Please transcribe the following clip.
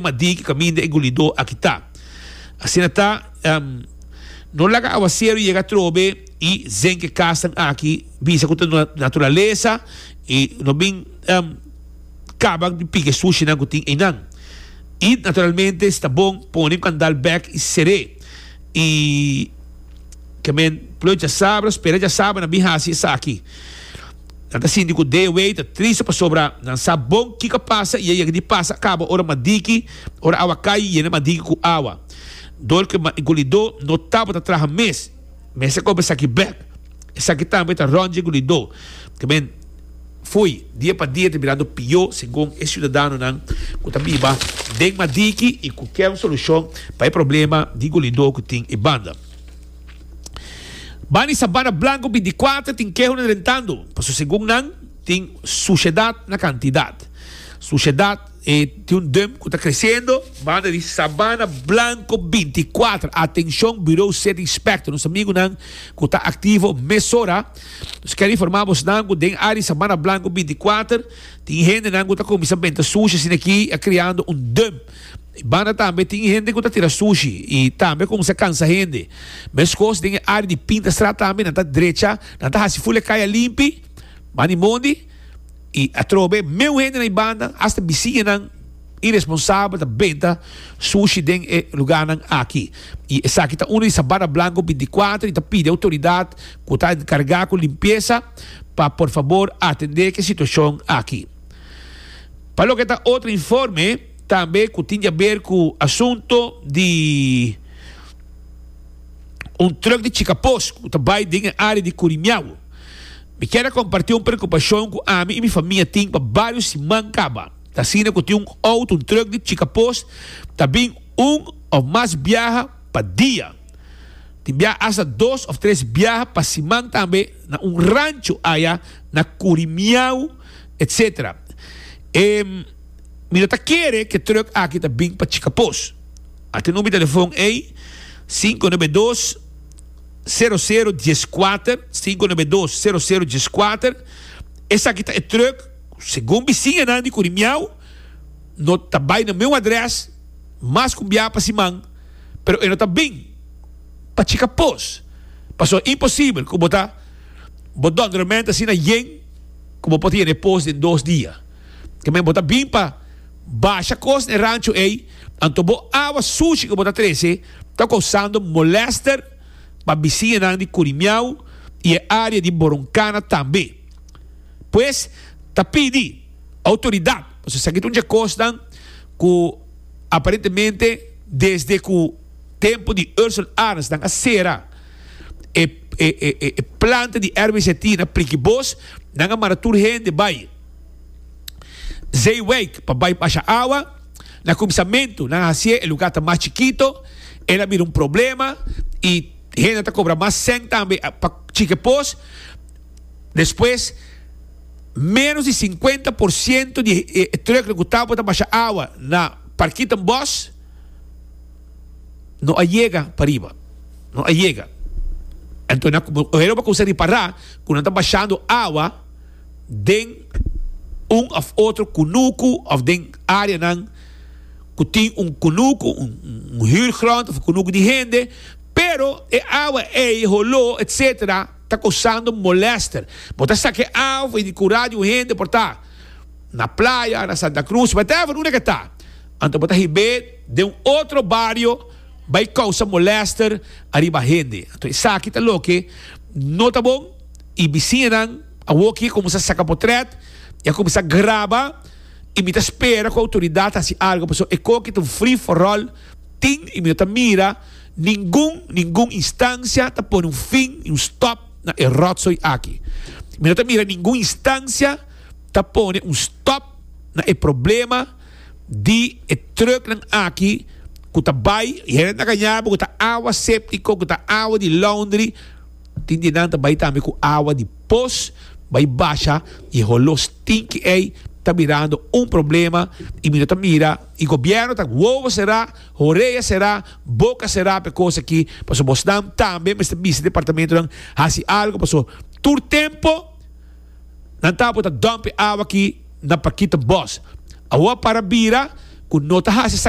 Ma di ki kaminda e gulidó a kitá. Asina ta, no laga awaseru yega trobe i zengk e kasnan aki bisa ku ta no naturalesa i no bin kaba di pika e sushinan ku tin einan. I naturalmente si ta bon pone e kandal bèk i ser'é. I ke men plo djasabra, spera djasabra nan bin hasi esaki. Nan ta sinti ku DW ta triste pasobra nan sa bon kiko pasa i a yega di pasa a kaba ora madiki, ora awa kai yena madiki ku awa. Dor ku e man Igulidó no tabata traha mes, mester koba esaki bèk. Esaki tambe ta rònje Igulidó. Kiben fo'i, dia pa dia ta birando pió segun e siudadanonan ku ta biba den madiki i ku ker un solushon pa e problema di Igulidó ku tin e banda. Ban di sabana blanku binticuater tin kehonan rentando, pasobra segun nan tin suciedad na cantidad. Suciedad e tin un dum cu ta creciendo. Banda di sabana blanku binticuater, atencion Bureau City Inspector, nos amigunan cu ta activo mesora, nos ker informa bosnan cu den área di sabana blanku binticuater tin hendenan cu ta cuminsa benta sushi asina aki a creando un dum. E banda tambe tin hende ku ta tira sushi i tambe a kuminsá kansa hende. Meskos den e área di pinta strat tambe nan ta drecha, nan ta hasi ful e kaya limpi, man i mondi i atrobe meu hende na e banda, asta bisiñanan iresponsabel ta benta sushi den e lugánan aki. I esaki ta unu di Sabana Blanco bintikuater i ta pidi outoridat ku ta enkargá ku limpiesa pa por fabor atendé ku e situashon aki. Pa loke ta otro informe. Tambe cu tin diaber cu asunto di un truck di Chicapos cu ta bay den e area di Curimiahu. Mi kier a comparti un preocupacion cu ami y mi famia tin pa bario siman caba. Ta asina cu tin un auto, un truck di Chicapos, ta bin un of mas biaha pa dia. Tin bia hasta dos of tres biaha pa siman tambe na un rancho aya na Curimiahu etc. E. Mi lo ta kere ku e trùk aki ta bin pa Chicapos. Aki number di telefòn ei, sinku nove dos, sero sero dies kuater, sinku nove dos, sero sero dies kuater. Esaki ta e trùk, segun bisiñanan di Kurimiaw, no ta bai na meu adrès mas ku un biaha pa siman, pero e no ta bin pa Chicapos. Pasobra e imposibel ku bo ta bo dònde ramente asina yen ku bo por ta yega na e pos den dos dia. Ke men bo ta bin pa basha kos na e rancho ei, anto bo awa sushi ku bo ta trese ta kousando molèster pa bisiñanan di Kurimiau i e área di Boronkana tambe. Pues ta pidi outoridat pasobra esaki ta un dje kosnan ku aparentemente desde ku tempu di Ursel Arens nan a sera e planta di RBZT na Prikibos, nan a manda tur hende bai. zeewijk pa bai basha awa. Na kuminsamentu nan a hasié e lugá ta mas chikito, el a bira un problema i hende ta kobra mas sèn tambe pa chike pos. Despues ménos di sinkuenta por sientu di e trùknan ku tawba ta basha awa na Parkietenbosch no a yega pariba, no a yega. Anto nan a kumsa ripará ku nan ta bashando awa. den un of otro kunuku of den areanan ku tin un kunuku, un huurgrond of un kunuku di hende, pero e awa ei, holó etc. Ta kosando molèster. Bo ta sa ku e awa for di kurá di un hende por ta na playa, na Santa Cruz, whatever, unda ke ta, anto bo ta hib'é den un otro bario bai kousa molèster ariba hende. Anto esaki ta loke no ta bon. y bisiñanan awo ki a cuminsa saca potret y a cuminsa graba y mi ta spera cu autoridad ta haci algo pasobra e coki ta un free for all tin y mi no ta mira ningun ningun instancia ta pone un fin ni un stop na e rotzooi aki. Mi no ta mira ningun instancia ta pone un stop na e problema di e trucknan aki cu ta bay y hende ta gana bo cu ta awa septico cu ta awa di laundry. Tin di nan ta bai tambe ku awa di pos bai basha i e holo stinki ei ta birando un problema i mi no ta mira i gobièrnu ta wowo será, horea será, boka será pa e kos aki pasobra bosnan tambe mester bisa departamentunan hasi algu paso tur tempu nan tabata por ta dòmp e awa aki na Paquita Bos. Awor a para bira ku no ta hasi esaki.